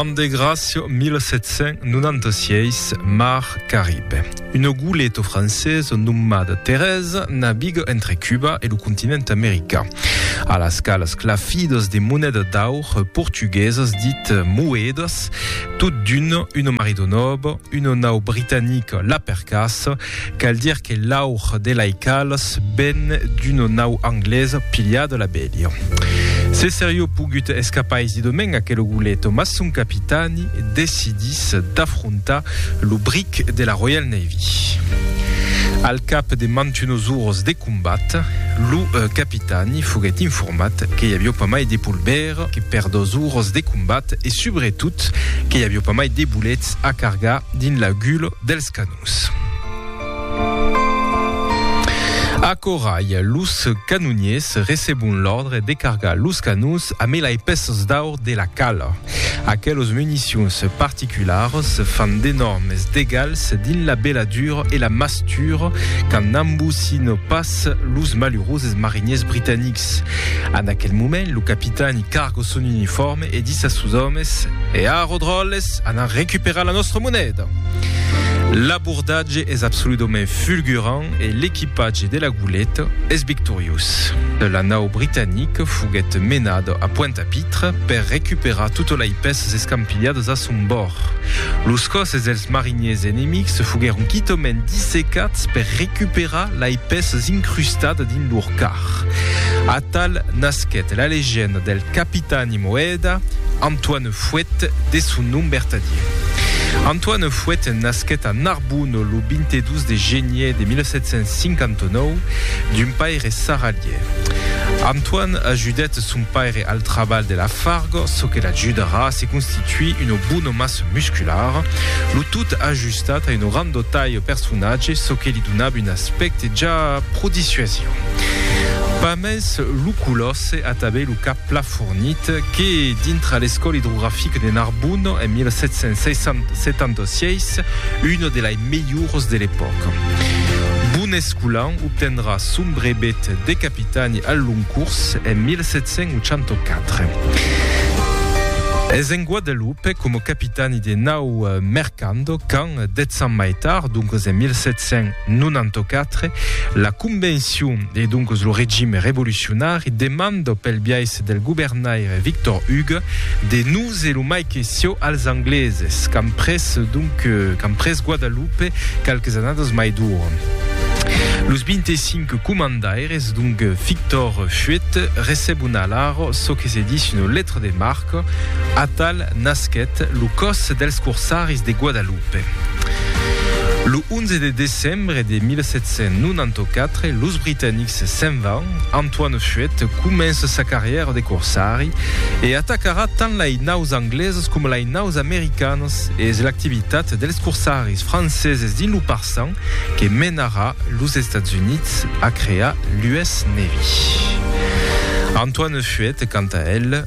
An de Gracio 1796, Mar Caribe. Una goleta francesa nomada Teresa naviga entre Cuba e lo continent american. A las calas clafidas de moneda d'aur portuguesas dit moedas, tot d'una, una marido nova, una nau britanica la percassa Cal dire que l'aur de lei calas ven d'una nau anglesa pilhada la bèlha. Se serió pogut escapar es didomèn aquel oguleto, mas son capitani decidís d'afrontar lo bric de la Royal Navy. Al cap de mantunos oras de combat, lo capitani foguèt informat que i avió pas mai de polvèra que per dos oras de combat e subretot que i avió pas mai de bolets a cargar dins la gula dels canons. Vos. A Corail, los canoniers recebon l'òrdre de cargar los canons a mela e peços d'aur de la cala. Aquelos municions particularhs fan d'enòrmes degals dins la beladura e la mastura qu'an n'ambossino pas los maluroses mariniers britanics. En aquel moment, lo capitan i cargo son uniforme, E dis as sos òmes, E a Rodròles, anar recuperar la nòstra moneda! L'abordatge es absoludament fulgurant e l'equipatge de la goleta es victoriós. La nau britanique foguèt menada a Pointe-à-Pitre per recuperar totes lei pèças escampilhadas a son bòrd. Los còsses dels mariniers enemics foguèron quitament dissecats per recuperar lei pèças incrustadas dins lor car. Atal nasquèt la legenda del. Capitani Moeda, Antoine Fouet de son nom bertadier. Antoine Fouet nasquèt a Narbona lo 22 de genier de 1759 d'un paire sarralier. Antoine ajudèt son paire al trabalh de la farga, çò que l'ajudarà a se constituir una bona massa musculara, lo tot ajustat a una granda talha personatge, çò que li donava un aspècte ja pro dissuasiu. Pas mens lo color, Se atabè lo cap pla fornit que, dintra l'Escòla idrografica de Narbon en 1776, un de lai melhors de l'epòca. Bon escolan, obtendrà son brevet de capitani al long curs en 1784. Es en Guadaloupe, coma capitani de nau, Cando, quand, dètz ans mai tard, doncas en 1794, la Convencion e doncas lo regime revolucionari demanda pel biais del governaire Victor Hugues de noser lo mai que sieu als Angleses qu'an pres, donc, qu'an pres Guadalupe qualques annadas mai dora. Los 25 comandaires, donc, Victor Huet, recebon alara çò que se ditz una letra de marca, Atal nasquèt lo Còs dels Corsaris de Guadalupe. Lo 11 de decembre de 1794, los britanics se'n van, Antoine Fuet comença sa carrièra de corsari e atacarà tant lai naus anglesas coma lai naus americanas e es l'activitat dels corsaris franceses dins lo Parçan que menarà los Estats Units a crear l'US Navy. Antoine Fuet, quant a el,